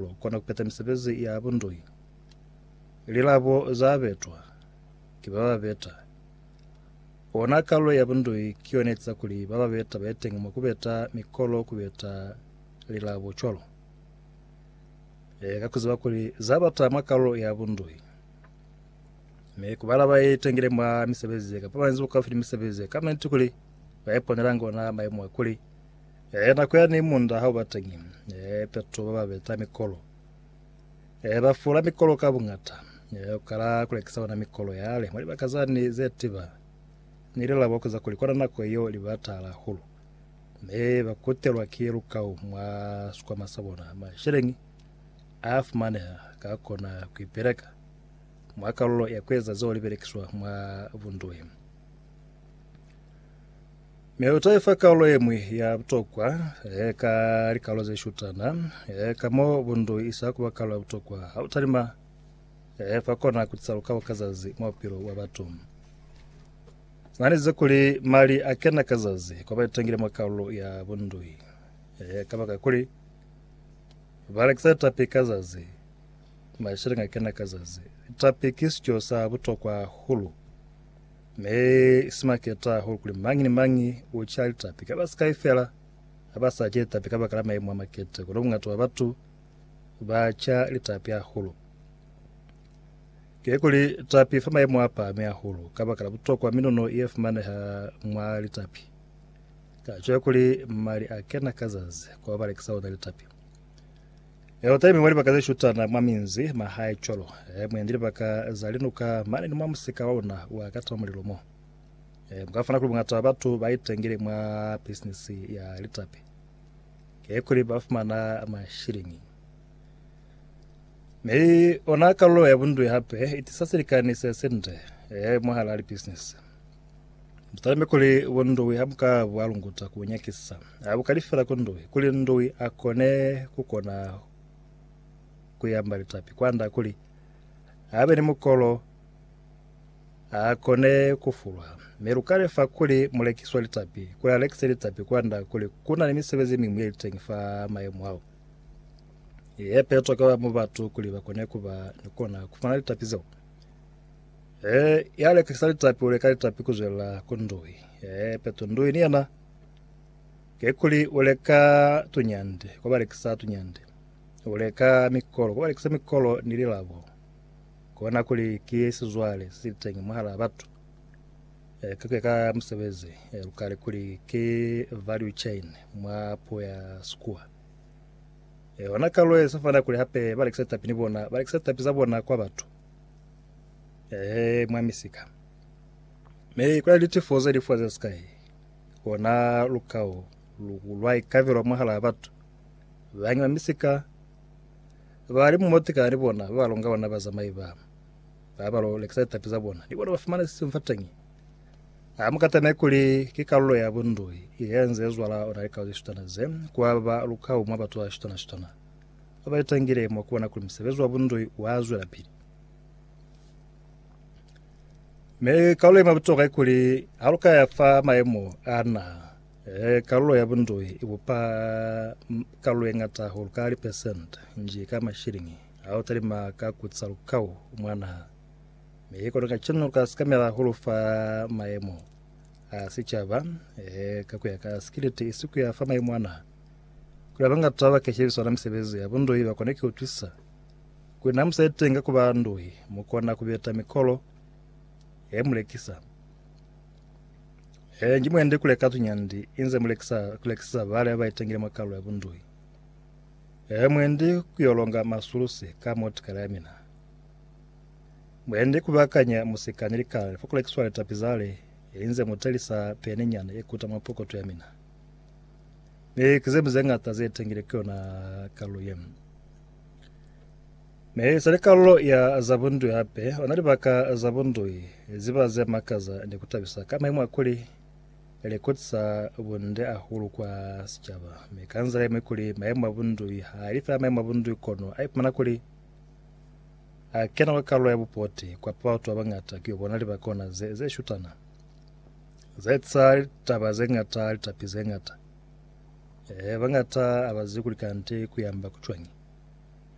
Lu kona ku peta misebezi ya bundui. Lilabo za betwa ki ba ba beta. Ona kalulo ya bundui ki yona etiza kuli ba ba beta ba etengi mwa ku beta mikolo ku beta lilabo cwalo. Leka ku ziba kuli za bata mwa kalulo ya bundui. Mi ku bala ba itengile mwa misebezi ye ka pamanyezi bukaufi ni misebezi ye ka niti kuli ba iponelanga ona maimo a kuli Eh, nako ya ni munda ha uba teñi. Eh, peto ba ba beta mikolo. Eh, ba fula mikolo ka bungata. Eh, u kala kulekisa ona mikolo yale. Mwa libaka za ni ze tiba, ni ile labo kuza kuli kona nako yeo li ba taala hahulu. Me ba kutelwa ki lukau mwa sikwama sa bona. Masheleñi a fumaneha ka kona kuipeleka mwa kalulo ya kueza zeo libelekiswa mwa bunduhi. Mi u ta i fa kaolo ye ñwi ya butokwa ka likalo ze shutana, ka mo bundu i sa ku ba kaolo ya butokwa ha u talima fa kona ku tisa lukabo ka zazi mwa bupilo bwa batu. Na ni ze kuli mali a kena ka zazi kwa ba itangile mwa kaolo ya bundu i, kabaka kuli ba lekisa litapi ka zazi, masheleñi a kena ka zazi. Litapi ki sico sa butokwa hahulu. Ne si maketa hahulu kuli mañi ni mañi u ca litapi ka basikai fela. Ha ba sa ce litapi kabakala maimo a makete, kono bungata bwa batu ba ca litapi hahulu. Kikuli litapi fa maimo a pahami hahulu kabakala butokwa minuno ye fumaneha mwa litapi. Ka co kuli mali a kena ka zazi kwa balekisa ona litapi. Elotaimu mwa libaka ze shutana mwa minzi, mahae cwalo, e, mwendi libaka za linuka mane ni mwa musika wa luna wa ka tama mulilo mo. E, muka fumana kuli bungata bwa batu ba itengile mwa bisinisi ya litapi. Ke kuli ba fumana mashilingi. Mi ona kalulo ya bundwi hape itisa silikani se sinde, e, mwahala libisinisi. Butalime kuli bunduwi ha bu ka bwa lunguta ku nyakisa. Ha bu kali fela ku nduwi, kuli nduwi a kone ku kona ku yamba litapi kwanda kuli a be ni mukolo a kone ku fulwa. Mi lu ka lefa kuli mulekisi wa litapi kuli a lekise litapi kwanda kuli ku na ni misebezi ye miñwi ye li teñi fa mayemo ao ye pe tokwa mu batu kuli ba kone ku ba ni kona ku fumana litapi zeo. Ee, ya lekisa litapi u leka litapi ku zwelela ku ndui. Ee, peto ndui ni yena kekuli u leka tunyande kwa ba lekisa tunyande. U leka mikolo kwa ba lekisa mikolo ni lilabo. Kona kuli ki sizwale si sili teñi mwahalaa batu. Ee, ke ku ya ka musebezi, ee, lu kale kuli ki value chain mwa puo ya Sikuwa. Ee, ona kalwe se fana kuli hape ba lekisa litapi ni bona, ba lekisa litapi za bona kwa batu. Eh, mwa misika. Me kwa li tifoze li foze sky. Ona lukao lukulwa ikavelo mwahala batho. Bangi ba misika ba li mumotika ni bona ba longa bona ba zamai ba. Ba ba lo lekisa tapi za bona. Ni bona ba fumana sisi mfatangi. A mukata me kuli ke kalulo ya bundoi. Iye nze zwala ona likao ze shutana ze kwa ba lukao mwa batho ba shutana shutana. ba ba litangile mwa ku bona kuli musebezi wa bundoi wa zwela pili. Me kalulo ye mabutoka ikuli ha lu ka ya fa maemo a na e, kalulo ya bundoi i bupa kalulo ye ngata hulu ka lipesente nji ka mashilingi ha u talima ka kutsa lukau mwa naha. Me kono ka cinu lu ka sikamela hulu fa maemo a sicaba e, ka ku ya ka sikiliti isi ku ya fa maemo a naha. Kuli abangatwa ba keshebiswa na misebezi ya bunduhi bakone ki utwisisa kuli na musa iteñi ka kuba nduhi mukona kubeta mikolo ye mulekisa. Ee, nji mwendi kule ka tunyandi inze mulekisa kulekisisa bale baitengile mwa kalu ya bunduhi. Ee, mwendi kuyolonga masulusi ka motikala ya mina. Mwendi kubakanya musika ni likala fokulekiswa litapi zale inze mutelisa peni nyana yekuta mwa pokoto ya mina. Mi ki zemi zeñata ze tengile ki yona kalulo ye. Mi sa li kalulo ya za bundui hape, ona libaka za bundui ziba ze makaza ni ku tabisa ka maimo a kuli li kutisa bunde hahulu kwa sicaba. Mi ka nzila ye ñwi kuli maimo a bundui ha li fela maimo a bundui kono a ipumana kuli a kena kwa kalulo ya bupoti kwa pa batu ba bañata ki yo bona libaka ona ze, ze shutana. Zaetsa litaba zeñata, litapi zeñata. Eehe, bañata abazi kuli kande kuyamba kucwañi.